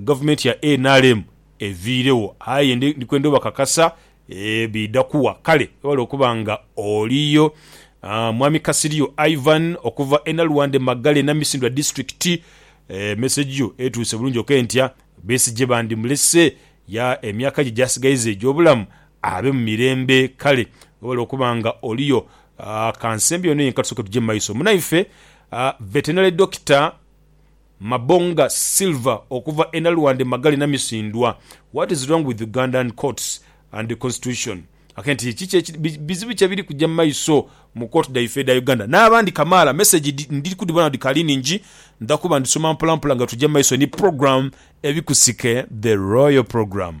Gavumenti ya nrm eviiregho aye ndi kwenda obakakasa biidha kuwa. Kale webale okuba nga oliyo. Mwami Kasiryo Ivan okuva e Naluwande Magale Namisindwa District, Message yo etuuse bulungi ok ntya Besigye bandimulese ya emyaka gye gyasigaiza egy'obulamu abe mu mirembe. Kale webale okuba nga oliyo. Kansembi ono yenka tusooke tugye mu maiso. Munaife Veterinary Doctor. Mabonga Silver okuva e Nalwande Magale Namisindwa, What is wrong with Ugandan courts and constitution? Ake nti kiki ekiri bizibu ki ebiri kuja mu maiso mu kooti dhaife edha Uganda n'abandi kamaala. Message ndiri kudhibona nga dhikaali nhingi ndha kuba ndhisoma mpolampola nga tuja mu maiso ni program Ebikusike The Royal Program.